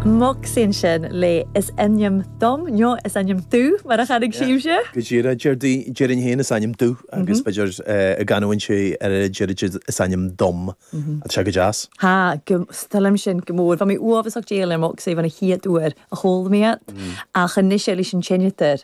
Moxie ansin le is ainm dom, nó is ainm domh mar a chanadh sibhse. Go díreach, déarfainn féin is ainm domh agus b'fhéidir i gcanúint an oiread déarfaidh siad is ainm dom. Tá sé go deas. Tá, is toil liom sin go mór. Bha mi uabhasach dèidheil air Moxie bhon a' chiad uair a chuala mi iad, ach anois leis an t-seinneadair.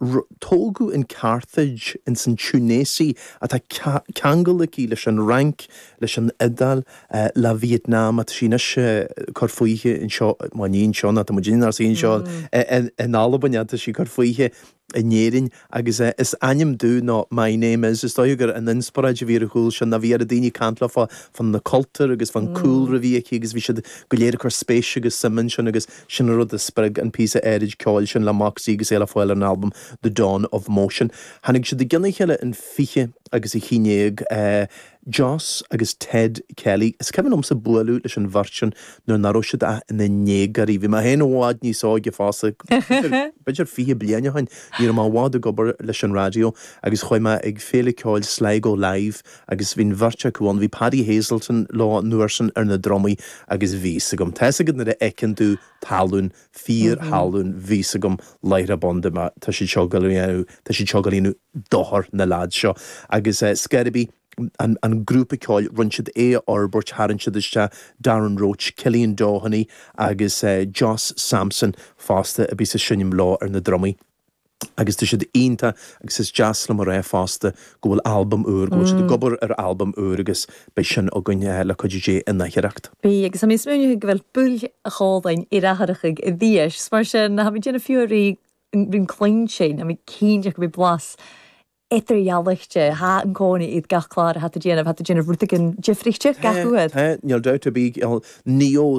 Tógadh in Carthage ins an Túinéis atá ceangal aici leis an Fhrainc, leis an Iodáil, le Vietnam, tá sí anois ag cur fúithi anseo, bhuel ní anseo, nó tá muid anois anseo in Albain ach tá sí ag cur fúithi in Éirinn agus is ainm domh nó My name is. Is dócha gur an inspioráid a bhí ar a chúl sin ná bhí daoine ag caint léi fá na cultúir agus fán cúlra a bhí aici agus bhí siad go léir ag cur spéise agus suime ansin agus Sin an rud a spreag an píosa áirid ceoil sin le Moxie agus é le fáil ar an albam The Dawn of Motion. Tháinig siad i gcionn a chéile in 20 agus a haon déag, Jos agus Ted Kelly. Is cuimhin liomsa bualadh leis an bheirt sin nuair ná raibh siad ach ina ndéagóirí. Bhí mé féin i bhfad níos óige fosta, b'fhéidir fiche bliain ó shin. Ní raibh mé i bhfad ag obair leis an raidió agus chuaigh mé ag Féile Ceoil Sligo Live, agus bhí an bheirt acu ann, bhí Paddy Hazelton leo an uair sin ar na drumaí agus bhí fhios agam, tá fhios agat nuair a fheiceann tú tallann, fíorthallann, bhí fhios agam láithreach bonn dúirt mé tá siad seo go dhéanamh, tá siad seo ag gabháil a dhéanamh dochar na leads seo agus eh Scaredy, an, an grúpa ceoil, rinne siad é a fhorbairt, tharraing siad isteach Darren Roche, Cillian Doheny agus eh Josh Sampson fosta a bhí ag seinm leo ar na drumaí. Agus tá siad iontach agus is deas liom a rá fosta go bhfuil albam úr, go bhfuil siad ag obair ar albam úr agus beidh sin againn le cuidiú Dé in aicearracht. Bidh, agus tha mi smaoineachadh gu bheil buill a' chòmhlain air atharrachadh a-rithist, is mar sin tha mi a' dèanamh fiughair ri chluinntinn, tha mi cinnteach gum bi blas eadar-dhealaichte, tha an còmhnaidh aig gach clàr a tha iad a' dèanamh, tha iad a' dèanamh rudeigin diofraichte gach uair. Tá, tá, níl dabht ar bith, níl, níl.